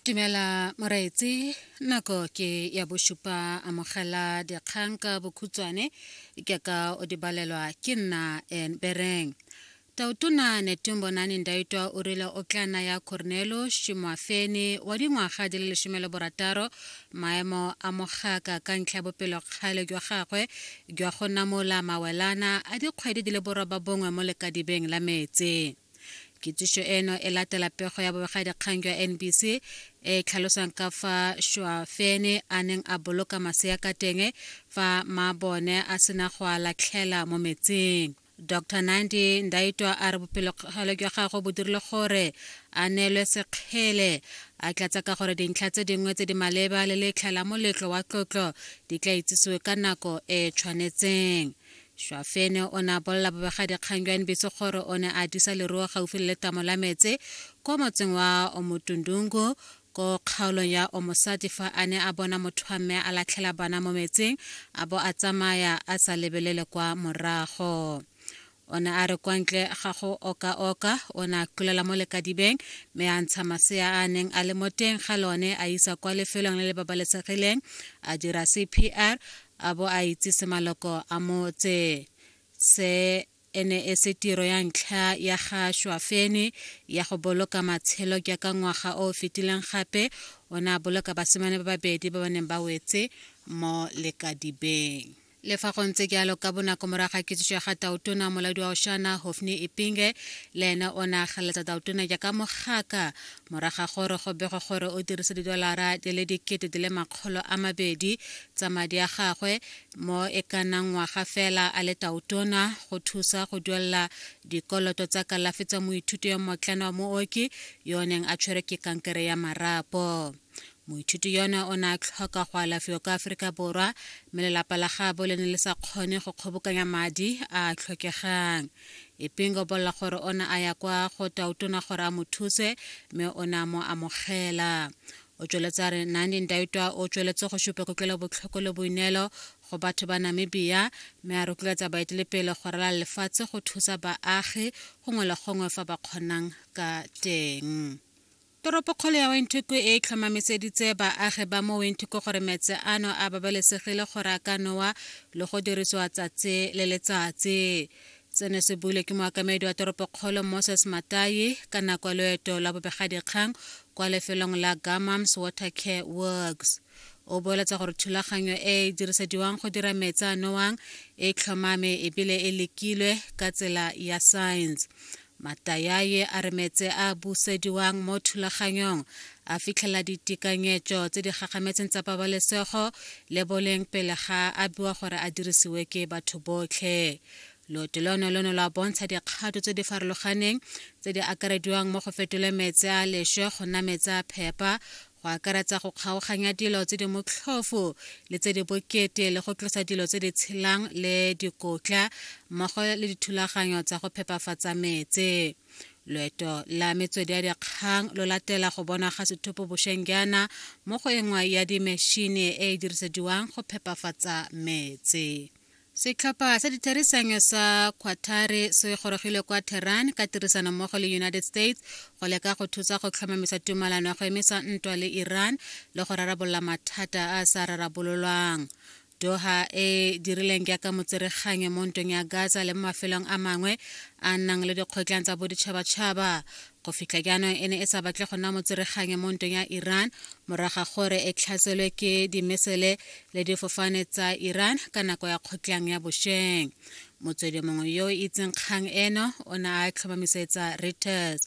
Dumela moreetsi nako ke ya bosupa amogela dikgang ka bokhutshwane ke ka o di balelwa ke nna en bereng tautona netumbonane ndaitwa o rile o tla naya cornelo shimwafene wa dingwaga di le lesome le borataro maemo a mogaka ka ntlha ya bopelokgale jwa gagwe jwa go namola mawelana a dikgwedi di le borobabongwe mo lekadibeng la metsi kitsišo eno e latela pego ya bobegadikgang jwa nbc e tlhalosang ka fa šwafene a neng a boloka masea ka teng fa maabone a sena go a latlhela mo metsing dr nandi ndaitwa a re bopelokgale jwa gagwe bo dirile gore a neelwe sekgele a tlatsa ka gore dintlha tse dingwe tse di maleba le letlha la moletlo wa tlotlo di tla itsisiwe ka nako e tshwanetseng Šwafene o ne a bolela bobegadikgang jwa NBC gore o ne a disa leruo gaufi le letamo la metse kwa motseng wa Omotundungu ko kgaolong ya Omosati fa a ne a bona motho wa mme a latlhela bana mo metseng a bo a tsamaya a sa lebelele kwa morago. O ne a re kwa ntle ga go oka-oka o ne a kulela mo lekadibeng mme a ntsha masea a a neng a le mo teng ga lone a isa kwa lefelong le le babalesegileng a dira CPR a bo a itsise maloko a motse se e ne e se tiro ya ntlha ya ga Shwafene ya go boloka matshelo ke ka ngwaga o o fetileng gape o ne a boloka basimane ba babedi ba ba neng ba wetse mo lekadibeng le fa go ntse jalo ka bonako morago ga kitsiso ya ga tautona molaodi wa oshana hofni ipinge le ene o ne a galetsa tautona jaaka mogaka morago ga gore go begwe gore o dirise didolara di le dikete di le makgolo a mabedi tsa madi a gagwe mo e ka nnang ngwaga fela a le taotona go thusa go duelela dikoloto tsa kalafi tsa moithuti yo motlana wa mooki yo o neng a tshwerwe ke kankere ya marapo moithuti yone o ne a tlhoka go alafiwa kwa aforika borwa mme lelapa la gabo le ne le sa kgone go kgobokanya madi a a tlhokegang epeng o bolela gore o ne a ya kwa go tautona gore a mo thuse mme o ne a mo amogela o tsweletse a re nandi ndaitwa o tsweletse go supa kutlwelobotlhoko le boineelo go batho ba namibia mme a rotloetsa baetelepele go rala lefatshe go thusa baagi gongwe le gongwe fa ba kgonang ka teng toropokgolo ya wenthuku e tlhomamiseditse baagi ba mo wenthuku gore metse ano a babalesegile gore a ka nowa le go dirisiwa tsatsi le letsatsi Seno se buile ke moakamedi wa toropokgolo Moses Matayi ka nako ya loeto la bobegadikgang kwa lefelong la Gamams Water Care Works. O boeletsa gore thulaganyo e e dirisediwang go dira metsi a nowang e tlhomame ebile e lekilwe ka tsela ya science. Matayaye a re metse a busediwang mo thulaganyong a fitlhela ditekanyetso tse di gagametseng tsa pabalesego le boleng pele ga a biwa gore a dirisiwe ke batho botlhe. loto lono lo ne lwa bontsha dikgato tse di farologaneng tse di akarediwang mo go fetole metse a leswe go nna metse a phepa go akaretsa go kgaoganya dilo tse di motlhofo le tse di bokete le go tlosa dilo tse di tshelang le dikotla mmogo le dithulaganyo tsa go phepafatsa metse loeto la metswedi ya dikgang lo latela go bonwa ga sethopo bošweng jaana mo go engwe ya dimešhini e e dirisediwang go phepafatsa metse Setlhopha sa ditherisano sa Quatare se gorogile kwa Tehran ka tirisano mmogo le United States go leka go thusa go tlhomamisa tumalano ya go emisa ntwa le Iran le go rarabolola mathata a a sa rarabololwang. Doha e dirileng jaaka motsereganyo mo ntweng ya Gaza le mo mafelong a mangwe a nang le dikgotlang tsa boditšhabatšhaba go fitlha jaanong e ne e sa batle go nna motsereganyo mo ntong ya iran moraga gore e tlhaselwe ke dimesele le difofane tsa iran ka nako ya kgotlang ya bosheng motswedi mongwe yo o itseng kgang eno o ne a tlhomamisetsa reuters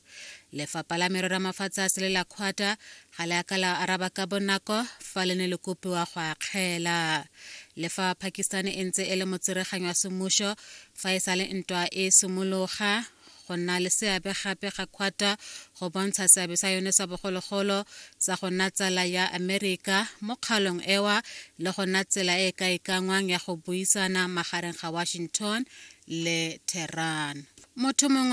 lefapha la merero ya mafatshe a sele la kgwata ga le aka la araba ka bonako fa le ne le kopiwa go akgela le fa pakistan e ntse e le motsereganyo wa semmušo fa e sa le ntwa e simologa go nna le seabe gape ga Quatar go bontsha seabe sa yone sa bogologolo sa go nna tsala ya Amerika mo kgalong ewa le go nna tsela e e ka ikangwang ya go buisana magareng ga Washington le Tehran. Motho mongwe